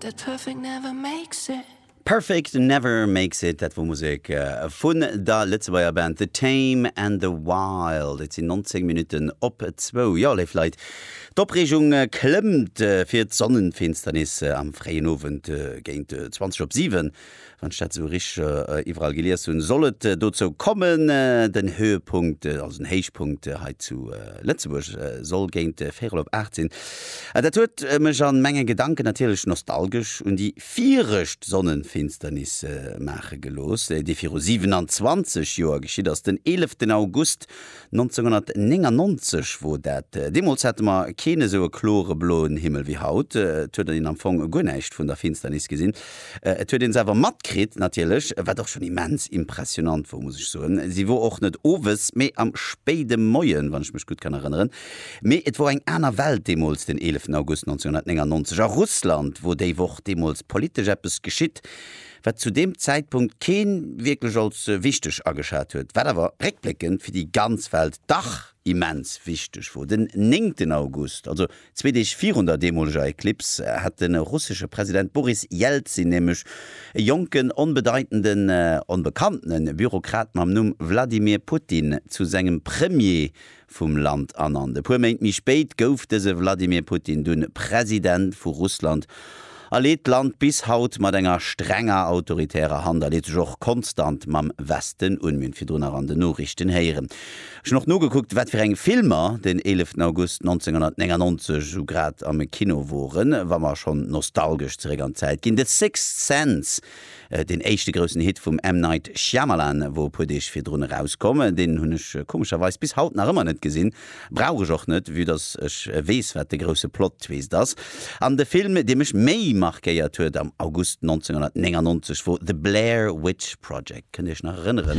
That perfect never makes it. Perfect never makes it, dat wor Musek vun der Lëtzebuerger Band The Tame and the Wild. Et sinn 19 Minutten op zwou. Jo, léif Leit, d'Opreegung klëmmt fir d'Sonnenfinsternis am fréien Owend géint 20 op 7. wann ech dat sou richteg iwwerall gelies hunn, soll et dozou kommen. Den Höhepunkt, also den Héichpunkt hei zu Lëtzebuerg soll géint véirel op 8 sinn. A dat huet mech a menge Gedanken natierlech nostalgesch un déi virëscht Sonnenfinsternis maache gelooss, déi viru 27 Joer geschitt ass, den 11 August 1999 wor dat. Deemols hate mer keen esou e klore bloen Himmel wéi haut. Et huet een am Fong guer näischt vun der Finsternis gesinn. Et huet een se awer matkritt, natierlech, wat och schon immens impressionant wor, muss ech soen. Se wor och net owes, mee am spéide Moien, wann ech mech gutt kann erënneren. Mee et wor eng aner Welt deemols, den 11 August 1999. A Russland wor déi Woch deemols politesch eppes geschitt. wat zu deem Zäitpunkt kee wierklech als wichteg ageschat huet, wat awer réckbléckend fir déi ganz Welt dach immens wichteg wor. Den néngten August, also zwee Deeg virun der deemoleger Eklips, hat de russesche President Boris Jelzin nämlech e jonken, onbedeitenden, onbekanntene Bürokrat mam Numm Wladimir Putin zu sengem Premier vum Land ernannt. E puer Méint méi spéit gouf dëse Wladimir Putin dunn President vu Russland a leet d'Land bis haut mat enger strenger autoritärer Hand a leet sech och konstant mam Westen un. Mir hunn et virdrun nach an den Noriichten héieren. Ech hunn och nogekuckt, wat fir eng Filmer den 11 August 1999 esou grad am Kino woren, wa mer schonn nostalgesch zeréck an d'Zäit ginn, The Sixth Sense, Deen éischte groussen Hit vum M. Night Shyamalan wor e puer Deeg virdrun erauskomm. Deen hunn ech komescherweis bis haut nach ëmmer net gesinn. Brauch ech och net, vue dass ech weess wat de grousse Plot-Twist ass. An de Film dee mech méi markéiert huet am August 1999 wor The Blair Witch Project. Kënnt Dir Iech nach erënneren?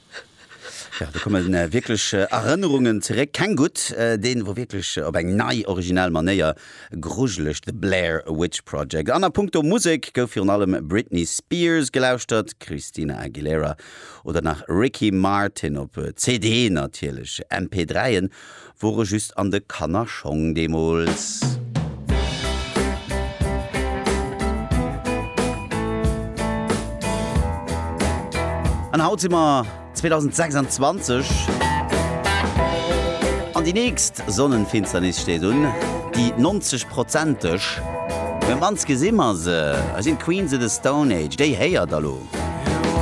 Jo, do kommen wierklech Erënnerungen zeréck, keng gutt, deen wor wierklech op eng nei, originell Manéier grujeleg, The Blair Witch Project. An a Punkto Musek gouf virun allem Britney Spears gelauschtert, Christina Aguilera oder nach Ricky Martin, op CD natierlech, MP3'en Wor e just an de Kannerschong deemols. An haut si mer 2026. An déi nächst Sonnenfinsternis steet un, déi 90 Prozenteg. Mee mannst gesi mer se. Hei sinn d'Queens of the Stone Age. Déi héiert der lo.